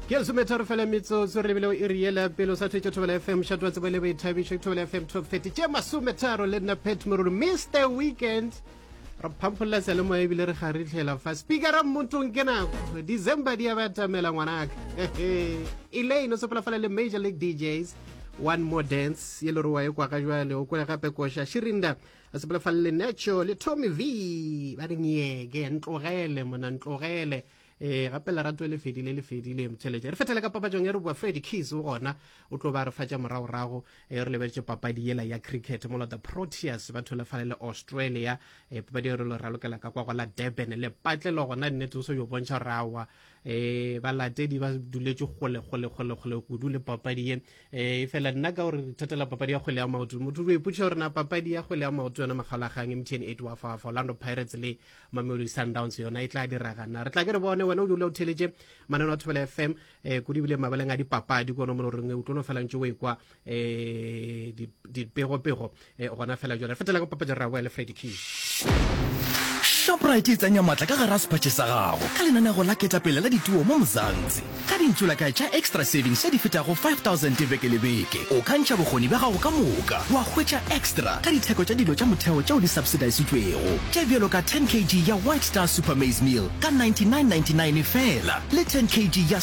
ke lesometa re fela metsotso re lebile o e riela pele o sa thetše thobela fm shato wa tsebo le boithabišo ke thobela fm top 30 tše masometharo le nna pet morolo mr weekend re phampholela seyalemoya ebile re kgaritlhela fa speakera mmotong ke nako december di ya batamela ngwanaka elaine o sepolafala le major league djs one more dance ye le rowa e kwa ga jwale o kwele gape koša shirinda a sepela fa lenetšo le tommy v ba re nyeke ntlogele mona ntlogele eh gape lerato le fedile le fedile motšheletše re fethele ka papajong e re boa freddy keys o gona o tlo ba re fatša moragorago e re lebeletse papadi yela ya cricket mola the proteas ba tholefale le australia e papadi e re lo ralokela ka kwa go la durban le patlelo gona nnete o se yo bontšha gore awa eh balatedi ba duletše kgole kgole kgole kgole kudu le papadi ye eh e fela nna ka gore re thatela papadi ya kgwele ya maoto motho o ipotšiša gore na papadi ya kgwele ya maoto yona makgalagang mtn eight wa fa fa orlando pirates le mamelodi sundowns yona e tla dira gana re tla ke re bone wena o dula o theletše manano a thobela fm um eh, kudu ebile mabaleng a dipapadi kono mo loreng o tlo no felantše o ekwa eh dipego pego eh, gona fela jona fetela go papadi ra le Freddy King shoprite e tsenya matla ka gara sepatše sa gago ka lenanego la ketapele la dituo mo mozantsi ka dintšola ka tša extra savings tše di fetago 5000 beke le beke o ka ntšha bokgoni bja gago ka moka wa hwetša extra ka ditheko tša dilo tša motheo tšeo di subsidisitšwego tše bjalo ka 10 kg ya white star super maize meal ka 9999 fela le 10 kg ya